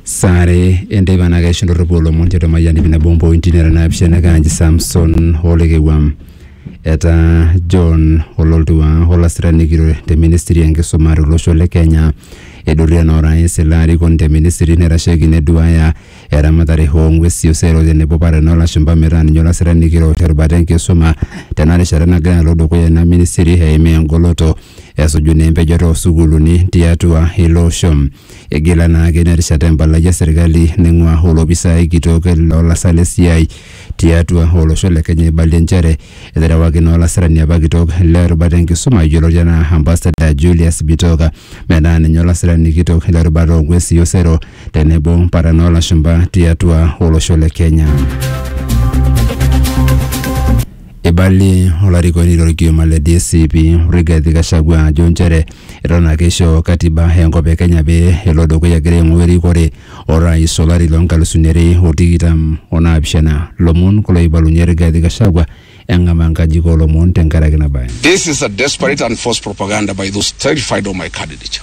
saare enteipa naa keisho ndorropu olomon tiatua Mayian iip nabo ompointi nara naapishana kaanji Samson Olekewam etaa John Ololtua olasirani kitok te ministry enkisuma tolosho le Kenya eidurie naa orais ilo arikoni te ministry naitasheki neduaya eramatare oo ng'wesi osero tenebo paran oo lashumpa metaa ninye olasirani kitok te rubata enkisuma tena rishata nagira alo dukuya ina ministry eimaa engoloto esuju naa empejoto oo sukuuluni tiatua ilo osho. Igila naa ake ina rishata empalai e serkali naing'ua olopisaai kitok loo lasak le siai tiatua olosho le Kenya eibalie nchere eterewaki naa olasirani apa kitok le rubata e nkisuma yioloti enaa Ambassador Julius Bitoka metaa ninye olasirani kitok le rubata oo ng'uesi o sero tenebo mpartan oo lashumpa tiatua olosho le Kenya. Eibalie olarikoni lorkioma le DCP Rigathi Gachagua ajo nchere eton ake eisho katiba enkop e Kenya pee elo dukuya egira aing'oa erikore orais olari loo nkalusuni are o tikitam o naapishana. Lomon kulo oibalunye Rigathi Gachagua eng'amaa nkajijik oo lomon tenkaraki ina bae. This is a desperate and false propaganda by those terrified of my candidature.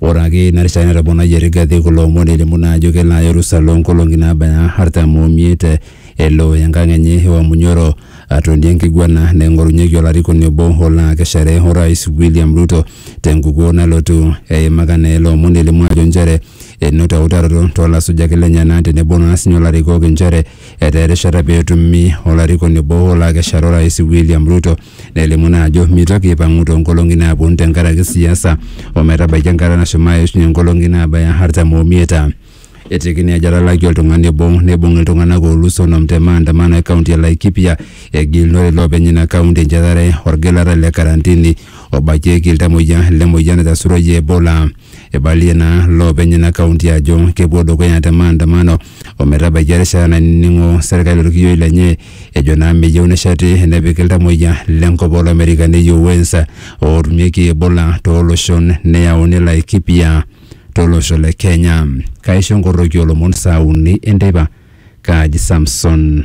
Ore ake ina rishata netoponayie Rigathi kulo omon elimu naa ajo kelo aya orusa loo nkolong'i naabaya artam o miet elo enkang enye e Wamunyoro atonie enkiguana naing'orunyeki olarikoni obo olo akeshare Orais William Ruto te nkukuo nalotu. Eimaka naa ele omoni elimu ajo nchere enoto eutaroto too lasujak lenyena tenebo naa sinye olarikok inchere etaa erishata pee etumi olarikoni obo olo akeshare Orais William Ruto nelimu naa ajo meitoki aipang'u too nkolong'i naaponu tenkaraki siasa o metabaiki enkata nashomo aishunye nkolong'i naabaya artam omiet. Etiki naa ejo etalakie oltung'ani obo neibung iltung'anak oolus onom te maandamano e kaunti e Laikipia egilunore iloopeny ina kaunti enchetare olgilata le karantini obakieki iltamuoyia le moyian naitasuroyie Ebola. Eibalie naa loopeny ina kaunti ajo kepuo dukuya te maandamano ometabaiki erishata nainining'o serkali orkiyioi lenye ejo naa meyieu nesheti nepik iltamoyia lenkop olomerica neyieu wens ootumieki ebola tooloshon neyauni laikipia tolosho le kenya kaisho nkoroki olomon saa uni enteipa kaaji samson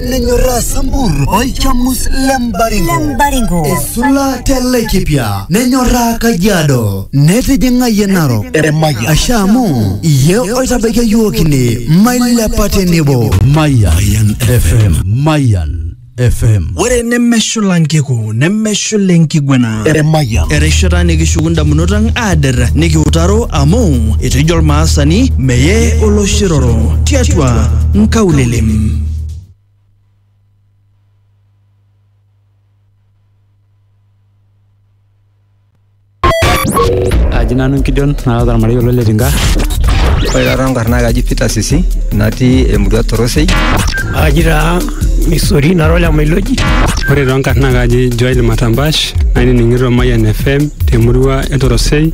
nenyorraa sambur olchamus le mbaringo Lembaringo. esula te laikipia nenyorraa kajiado netijing'ayie narok asha amu iye oitabaikia yiok ine mailepa tenebo Mayan FM. Mayan FM. ore nemeshula nkiku nemeshula enkiguana erishata nikishuku ndamunot ang aader nikiutaro amu etejo olmaasani meye oloshiroro tiatua nkaulele aji nanu Gideon nara ormarei olo le Tinga. Ore taata enkarna ai kaji Peter Sisi natii emurua Torosei. Aji taa Misori nara ole Mailoji. Ore too nkarn naa kaji Joel Matambash nainining'ito Mayian FM temurua e Torosei.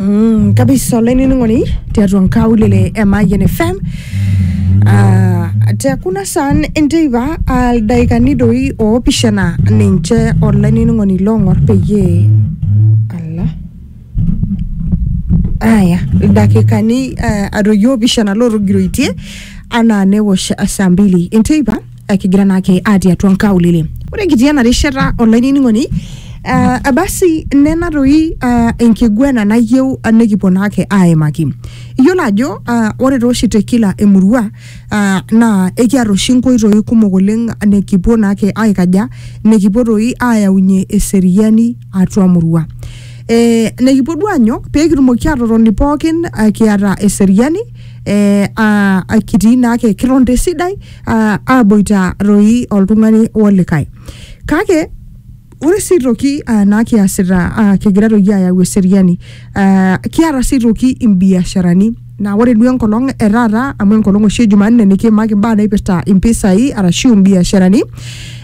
Mm, kabisa olainining'oni tiatua nkaulele e Mayian FM uh, te kuna saan enteipa uh, ildaikani doi oopishana ninche olainining'oni loong'or peyie Aya, ildakikani eh, adoyio opishana lootogiroitie anaa newosh saa mbili enteipa eh, kigira naake atii atua nkaulele. Ore kitii ena rishata olainining'oni eh, basi nena doi eh, enkiguana nayieu eh, nikipuo naake aimaki. Iyiolo ajo eh, ore taa oshi te kila emurua eh, naa ekiata oshi nkoitoi kumok oleng nikipuo naake aikaja nikipuo doi ayaunye eseriani atua murua eh, nikipuo duo anyok pee kitumoki atotoni pookin eh, kiata eseriani eh, ah, ah, kitii naake kiton tesidai ah, aboita toi oltung'ani olikae kake ore sii toki ah, naa kiasita ah, kigira toki ayau eseriani ah, kiata sii toki imbiasharani Naa ore duo enkolong e taata amu enkolong oshi e Jumanne nikiimaki imbaa naipirta impisai arashu imbiasharani.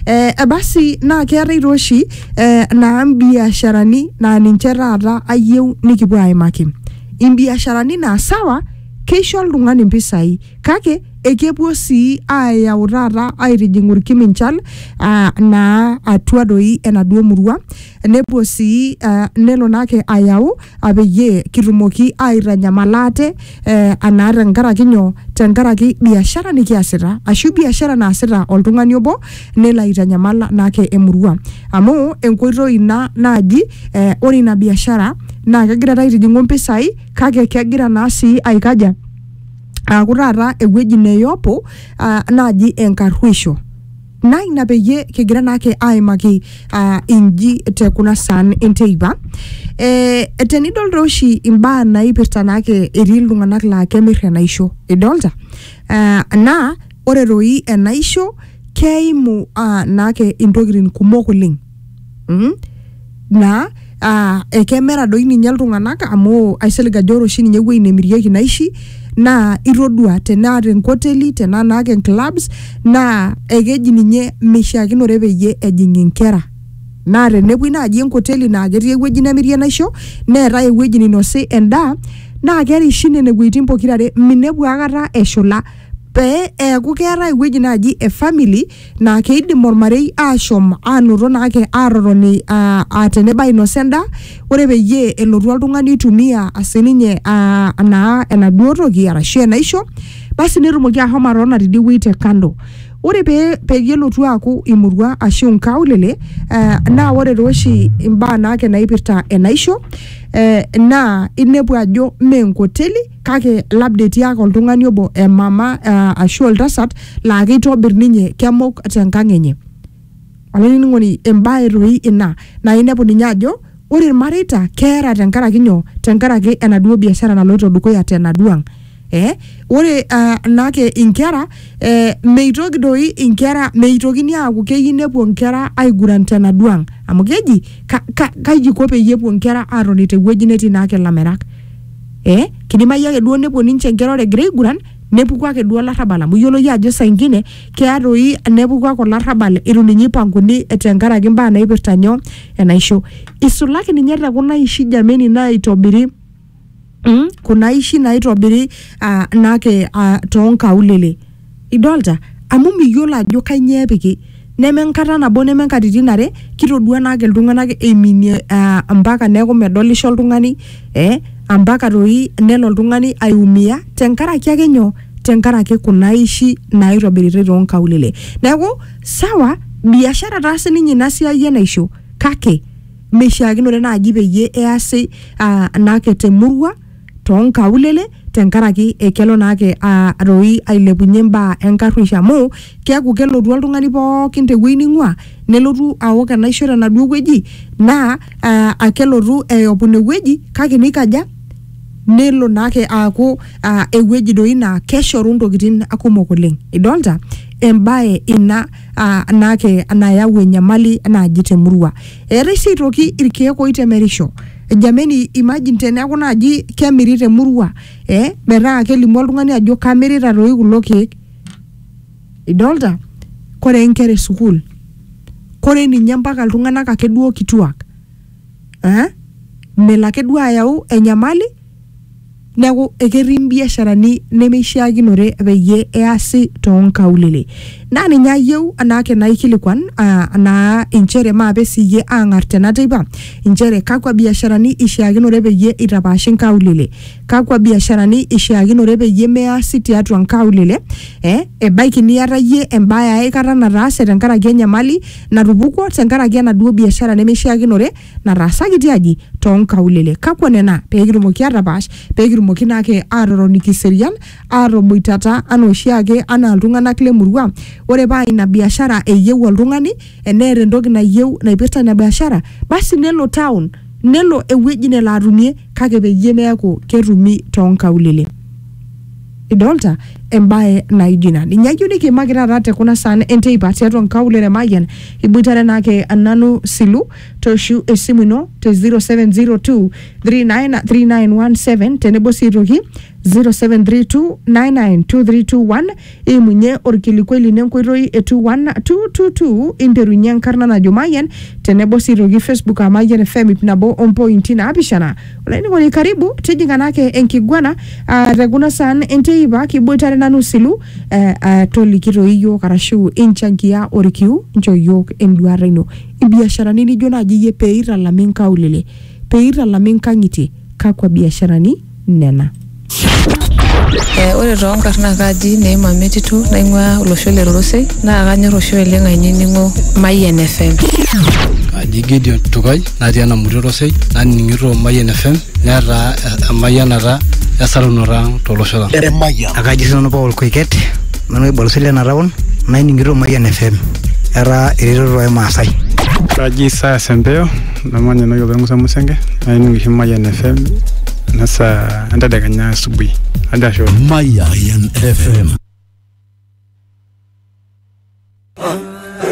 Eh, eh, basi naa keetae taa oshi eh, naa imbiasharani naa ninche taata ayieu nikipuo aimaki. Imbiasharani naa sawa keisho oltung'ani impisai kake ekepuo sii ayau taata aitijing'u irkiminchal uh, naa atua doi enaduo murua nepuo sii uh, nelo naake ayau apeyie kitumoki aaitanyamal ate eh, anaa tenkaraki nyoo tenkaraki biashara nikiasita ashu biashara naasita oltung'ani obo nelo aitanyamal naake emurua amu enkoitoi ina naaji eh, ore ina biashara naa kegira taa aitijing'u mpisai kake kegira naa sii aikaja aaku taata ewueji neyopo ah, naaji enkarruisho naa ina peyie kigira naake aimaki uh, inji te kuna saan enteipa eh, tenidol taa oshi imbaa naipirta naake etii iltung'anak laa kemirr enaisho idolta uh, naa ore toi enaisho keimu uh, naake intokitin kumok oleng mm? naa uh, ekemera doi ninye iltung'anak amu aisilig ajo ore oshi ninye ewueji nemirieki naishi naa itodua tenaa tenkoteli tenaa naa ke clubs naa ekeji ninye mishiakinore peyie ejing inkera naa tenepuoi naaji enkoteli naa ketii ewueji nemirie naisho neetae ewueji ninosi endaa naa kerishi nene wuejitin pokirare minepu akata eshula pee eeku keetae ewueji naaji e family naa keidim ormarei aashom aanoto naake aatotoni aa aa tenebo ainosa endaa ore peyie elotu oltung'ani oitumia sininye aa naa enaduo toki arashu enaisho basi netumoki ahomo atotona tidie wuei te kando ore pee peyie elotu aaku imurua ashu inkaulele eh, naa ore taa oshi imbaa naake naipirta enaisho eh, naa inepu ajo mee enkoteli kake labda etii ake oltung'ani obo emama uh, ashu oltasat laa keitobir ninye kemok tenkang enye olainining'oni embaye toi ina naa inepu ninye ajo ore irmareita keera tenkaraki nyoo tenkaraki enaduo biashara naloito dukuya tenaduo ang eh, ore uh, naake inkera eh, meitoki doi inkera meitokini aaku keyieu nepuo inkera aiguran tenaduo ang amu keji ka, ka, kaji iko peyie epuo inkera aatoni tewueji netii naake ilamerak eh, kidimayu ake duo nepuo ninche inkera ore egira aiguran nepuku ake duo olarrabal amu iyiolo iyie ajo saa ingine keya toi nepuku ake olarrabal itu ninye ipanguni tenkaraki imbaa naipirta nyoo enaisho isulaki ninye tekuna aishi jameni naitobiri mm, kuna aishi naitobiri uh, naake uh, tonkaulele idolta amu miyiolo ajo kainyoo epiki neme enkata nabo neme nkatitin are kitodua naake iltung'anak eiminie uh, mpaka neeku medolisho oltung'ani eh, ampaka toi nelo oltung'ani aiumia tenkaraki ake nyoo tenkaraki kuna aishi naitobiritai toonkaulele neeku sawa biashara taa sininye ina siai enaisho kake meishiakinore naaji peyie easi uh, naake temurua too nkaulele tenkaraki ekelo naake aa doi ailepunye imbaa enkarruisho amu keeku kelotu oltung'ani pookin tewuei ning'ua nelotu awok enaisho tenaduo wueji naa aa akelotu eyopu inewueji kake nikaja nelo naake aaku aa ewueji doi naa keshoru intokitin kumok oleng idolta embaye ina aa naake nayau enyamali naaji temurua eetae sii aitoki irkeek oitemerisho jameni imagine teneeku naaji kemiri temurua eh, metaa kelimu oltung'ani ajo kamirita toi kulo keek idolta kore inkera esukuul kore ninye mpaka iltung'anak ake duo kituak eh? melo ake duo ayau enyamali neeku eketii mbiasharani nemeishiakinore peyie easi toonkaulele naa ninye ayieu anaake naikilikuan uh, naa inchere maape siyie aang'ar tena teipa inchere kakwa biasharani ishiakinore peyie itapaashi nkaulele kakwa biasharani ishiakinore peyie measi tiatua nkaulele eh, ebaiki niata iyie embaye aikata nataase tenkaraki enyamali natupukuo tenkaraki enaduo biashara nemeishiakinore nataasaki tiaji too nkaulele. Kakwa nena pee kitumoki aatapaash pee kitumoki naa ake aatotoni kiserian aatoboitata anaa oshiake anaa iltung'anak le murua. Ore paa ina biashara eyieu oltung'ani eneeta entoki nayieu naipirta ina biashara basi nelo town nelo ewueji nelo atumie kake peyie meeku ketumi too nkaulele. Idolta embae naijo ina. Ninye ayieu nikiimaki taata te kuna saan enteipa tiatua nkaulele e Mayian iboitare naa ake nanu Silu toshu esimu ino te 0702 393917 tenebo sii aitoki 0732992321 imunye orkilikuai lino enkoitoi e 21222 interunye enkarna najo mayian tenebo sii aitoki facebook aa mayian fm ip nabo ompointi naapishana olainining'oni karibu tijing'a naake enkiguana ah, te kuna saan enteipa kiboitare nanu silu eh, ah, toliki toi iyiook arashu inchangia orkiu nchoo iyiook enduata ino Ibiasharani nijo naaji iyie pee eitalami nkaulele, pee eitalami nkang'itie, kakua biasharani nena? Eh, ore too nkarn naa kaaji Neema Metitu naing'uaa olosho le Rorosei naa kanyor oshi oleng ainining'o Mayian FM. Aji Gideon Tukai natii Enamuti Rorosei naning'ito Mayian FM netaa emayianata esarunoto ang tolosho lang. Emayian. Akaji sinanu Paul Koiket. Nanu olbarisi le ena taon naining'ito Mayian FM etaa eretoto ai Maasai. Kaji saa Sempeo namanya enewueji oltau Musa Musenge naining oshi Mayian FM ena saa entedekenya asubuhi. Ajo ashe oleng. Mayan FM.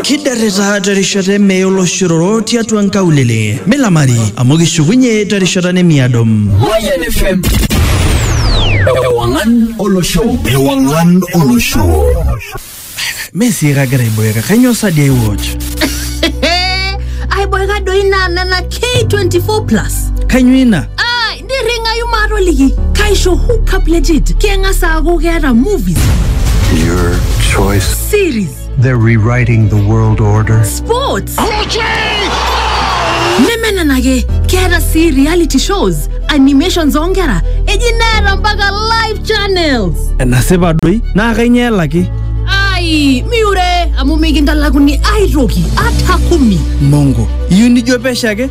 kiderrita terishata emee oloshororo tiatua nkaulele milamari amu kishukunye terishata nemiado Mayan FM. Ewangan Olosho. Ewangan Olosho. mesi kagira aiboeka kanyoo sadi aiwatch aiboeka doi naa nena k24 plus kanyoo ina nirringayu maatoliki kaisho hookup legit keng'as aaku keeta movies Your choice. series They're rewriting the world order. sports neme nena ake keeta sii reality shows animations oonkera eji neeta mpaka live channels enasipa doi naa kainyoo elaki ai miure amu mikintalakuni aitoki ata kumi mongo iyieu nijo pesho ake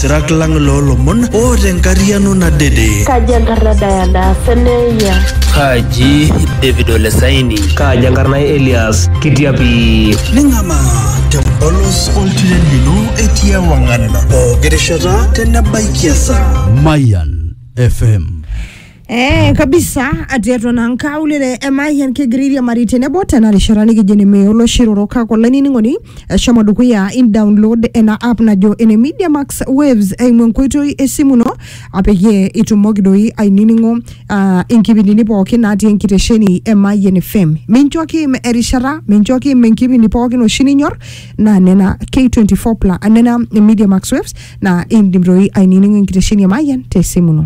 Sirak lang loolomon oota enkariano nadede. Kaji enkarna Diana Seneia? Kaji David Ole Saini? Kaji enkarna Elias Kitiapi? Ning'amaa tempolos oltiren lino etii ewang'an pooki rishata tenebaiki esaa. Mayan FM Eh, kabisa ati eton aa nkaulele emayian kigiriria mari tenebo tena rishata nikijo ene mee oloshiroro kake olainining'oni eshomo dukuya in download ena app najo ene media max waves eimu enkoitoi esimu ino apeyie itumoki doi ainining'o uh, inkipindini pookin natii enkitesheni e mayian fm mincho kim erishata mincho kim enkipindi pookin oshi ninyor naa nena k24 pla nena media max waves naa indim doi ainining'o enkitesheni e mayian tesimu ino